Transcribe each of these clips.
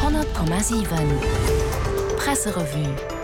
100,7 Presserevue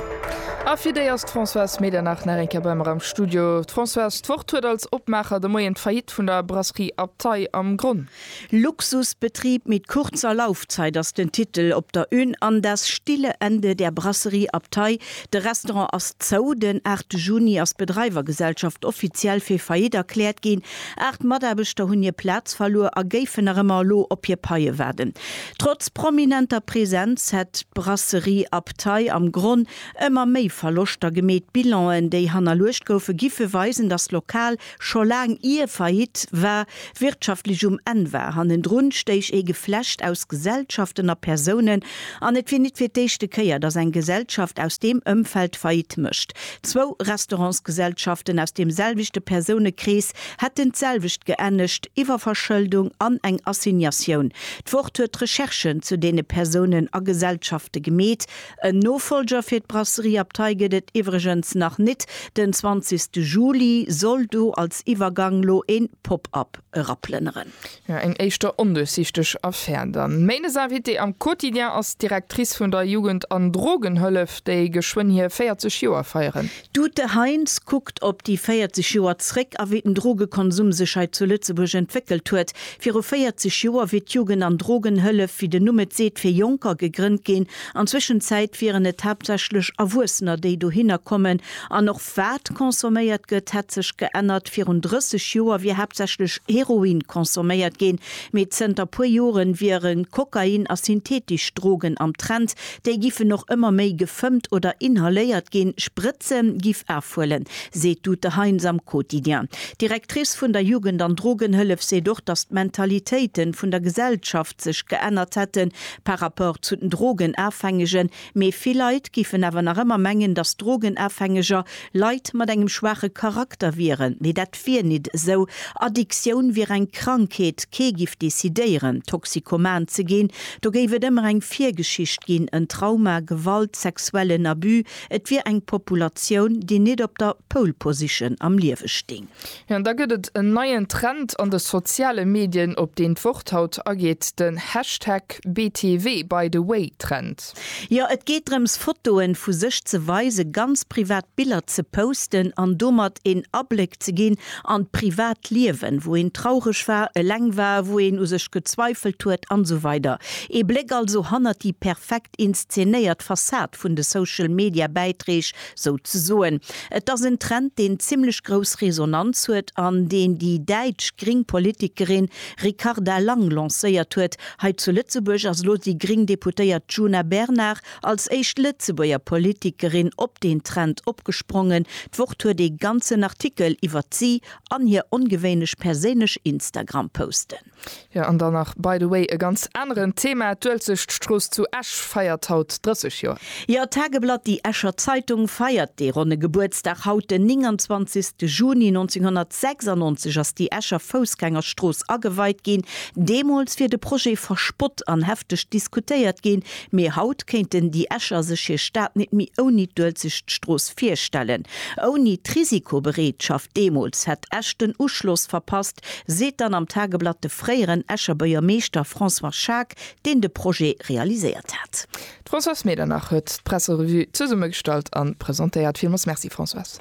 A fir déi ass d'Françoise Medernach nach eng Kéier bei mer am Studio. Françoise, d'Wort huet als Opmaacher de Moien d'Faillite vun der Brasserie Abtei am Gronn. Luxusbetrieb mit kurzer Laufzeit ass den Titel op der Une an Das stille Ende der Brasserie Abtei, de Restaurant ass zou. Den 8 Juni ass d'Bedreiwergesellschaft offiziell fir Faillite erkläert ginn. Aacht Mataarbechter hunn hir Plaz verluer a géifen nach ëmmer elo op hir Paie waarden. Trotz prominenter Presenz hätt d'Brasserie Abtei am Gronn ëmmer méi Verloschter gemeet. D'Bilanen, déi hannerluecht goufe giffe weisen, datt d'Lokal scho laang ier Faillite war, wirtschaftlech um Enn war. Hannendrun stéich ee Geflecht aus Gesellschaften a Persounen an et wier nit fir d'éischte Kéier, datt eng Gesellschaft aus deem Ëmfeld Faillite mécht. Zwou Restaurantsgesellschaften aus deem selwechte Persounekrees hätten d'selwecht geännegt, Iwwerverschëldung an eng Assignatioun. D'Wort huet d'Recherchen zu deene Persounen a Gesellschafte gemeet. En Nofolger fir d'Brasserie Abtei gëtt et iwwregens nach nit. Den 20 Juli soll do als Iwwergang lo een Pop-up eraplënneren. Jo, eng éischter onduerchsichteg Affär dann. Mains Invitées am Quotidien ass d'Directrice vun der Jugend an Drogenhëllef, déi geschwënn hir 40 Joer feieren. D'Ute Heinz kuckt op déi 40 Joer zréck a wéi den Drogekonsum sech hei zu Lëtzebuerg entwéckelt huet. Viru 40 Joer wier d'Jugend an Drogenhëllef, wéi den Numm et seet, fir Jonker gegrënnt ginn. An Zwëschenzäit wieren et haaptsächlech Erwuessener, déi dohinner kommen an och Wat consomméiert gëtt, hätt sech geännert. Virun 30 Joer wier haaptsächlech Heroin consomméiert ginn, mee zënter puer Jore wiere Kokain a syntheetesch Drogen am Trend. Déi giffen och ëmmer méi gefëmmt oder inhaléiert ginn. Sprëtze giff afhuelen, seet d'Ute Heinz am Quotidien. D'Directrice vun der Jugend an Drogenhëllef seet och, datt d'Mentalitéite vun der Gesellschaft sech geännert hätten par rapport zu den Drogenafhängegen. Mee vill Leit giffen awer nach ëmmer mengen, datt Drogenafhängeger Leit mat engem schwaache Charakter wieren. Mee dat wier nit esou. Addiktioun wier eng Krankheet. Kee giff decidéieren, Toxikoman ze ginn. Do géif et ëmmer eng Virgeschicht ginn, en Trauma, Gewalt, sexuellen Abus. Et wier eng Populatioun, déi nit op der Pole Position am Liewe sting. Jo, an da gëtt et en neien Trend an de soziale Medien, op deen d'Wort haut ageet, den Hashtag BTWByTheWay-Trend. Jo, et geet drëms, Fotoen vu sech ze weisen, ganz privat Biller ze posten an domat een Abléck ze ginn an d'privat Liewen, wou een traureg war, eleng war, wou een u sech gezweifelt huet an esou weider. Ee Bléck also hannert déi perfekt. inszenéiert Fassad vun de Social Media Bäitreeg sou ze soen. Et ass en Trend deen zimmlech grouss Resonanz huet an deen déi däitsch gring Politikerin Ricarda Lang lancéiert huet. Hei zu Lëtzebuerg ass elo déi gring Deputéiert Djuna Bernard als éischt Lëtzebuerger Politikerin op deen Trend opgesprongen. D'Wort huet ee ganzen Artikel iwwert si an hir ongewéinlech perséinlech Instagram-Posten. Jo an dann nach by the way e ganz aneren Thema, D'Uelzechtstrooss zu Esch feiert haut 30 Joer. Jo, d'Tageblatt Déi Escher Zeitung feiert dee ronne Gebuertsdag haut. Den 29 Juni 1996 ass déi Escher Foussgängerstrooss ageweit ginn. Deemools wier de Projet verspott an hefteg diskutéiert ginn. Mee haut kéinten déi Escher sech hir Stad nit méi ouni d'Uelzechtstrooss virstellen. Ouni d'Risikobereetschaft deemools hätt Esch den Uschloss verpasst, Projekt, seet dann am Tageblatt de fréieren Escher Buergermeeschter François Schaack, deen de Projet realiséiert hat. D'Françoise Medernach huet d'Presserevue zesummegestallt a presentéiert. Villmools Merci Françoise.